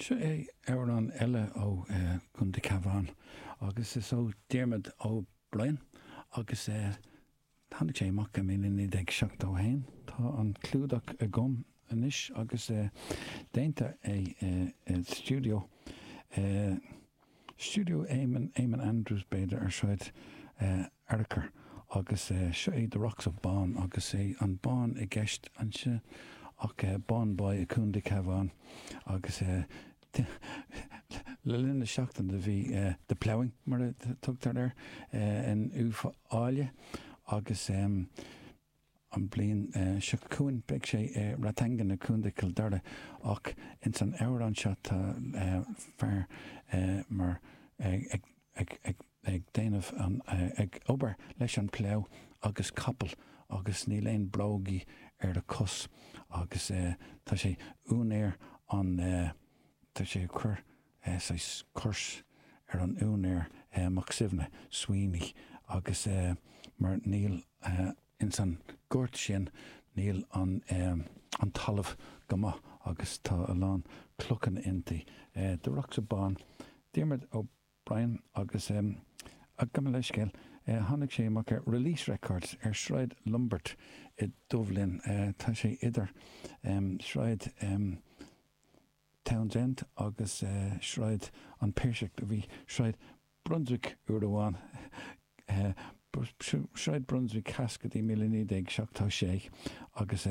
Seo é amhrán eile ó Chontae Cabhán agus is ó Diarmaid Ó Briain agus tháinig sé amach i míle naoi déag seachtó haon. Tá an clúdach agam anois agus déanta é i stiúideo. Stiúideo Éamonn, Éamonn Andrews b'fhéidir, ar Sráid Fhearchair agus seo é The Rocks of Bawn agus sé an Bawn i gceist anseo ach Bawnboy i Contae Cabhán agus le linn na seachtaine do bhí The Ploughing mar a tugtar air in Uíbh Fhailí agus An bhliain seo chugainn beidh sé i Rathangan, i Contae Chill Dara ach ins an amhrán seo tá fear mar ag déanamh an, ag obair leis an plough agus capaill agus níl aon brógaí ar a cos agus tá sé úinéir an, tá sé ag cuir, eh, saghas curse ar an úinéir, eh, Mac Suibhne, Sweeney, agus eh, mar níl eh, ins an gort sin níl an eh, an talamh go maith agus tá a lán clochanna inti. Eh, The Rocks of Bawn, Dermot O'Brien agus em, ah, gabh mo leithscéal, eh, tháinig sé amach ar Release Records ar Sráid Lombard i Dubh Linn, eh, tá sé idir em, Sráid em, Townsend agus Sráid an Phiarsaigh. Do bhí Sráid Brunswick uair amháin. Sráid Brunswick Theas go dtí míle naoi déag seachtó sé agus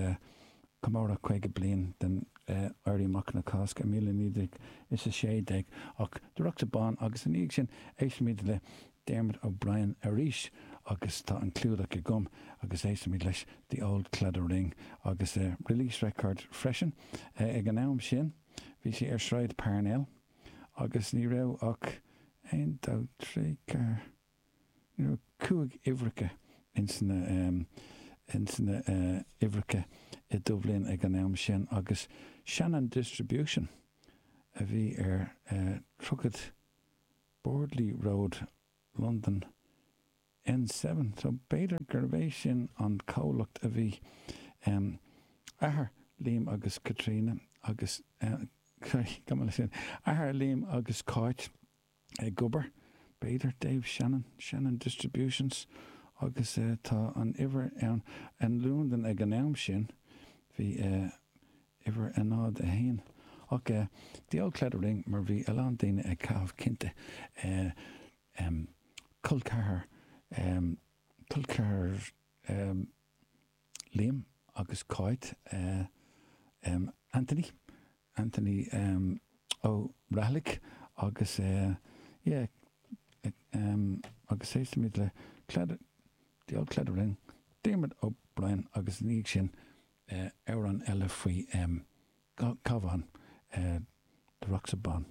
comóradh caoga bliain den Éirí Amach na Cásca i míle naoi déag is a sé déag. Ach The Rocks of Bawn agus i ndiaidh sin éistfimid le Dermot O'Brien arís agus tá an clúdach agam agus éistfimid leis The Old Claddagh Ring agus Release Records freisin. Ag an am sin bhí sé ar Shráid Parnell agus ní raibh ach aon dó trí ceathair ní raibh ach cúig uimhreacha ins na ins na uimhreacha i Dubh Linn ag an am sin agus Shannon Distribution a bhí ar 30 Bordeley Road, Londain, N Seven so b'fhéidir gurb é sin an comhlacht a bhí em athair Liam agus Caitríona agus em sorry gabh mo leithscéal athair Liam agus Cáit ag obair b'fhéidir Dave Shannon, Shannon Distributions agus eh tá an uimhir ann in Londain ag an am sin bhí eh uimhir a náid a haon. Ach eh, The Old Claddagh Ring mar bhí a lán daoine ag caitheamh cinnte eh, em, col ceathar em, col ceathar em, Liam agus Cáit eh, em, Anthony, Anthony em, Ó Rathlaigh agus eh, yeah, em, agus tosóimid le Cladd, The Old Claddagh Ring, Diarmaid Ó Briain agus i ndiaidh sin eh, amhrán eile faoi em, ca, Cabhán, eh, The Rocks of Bawn.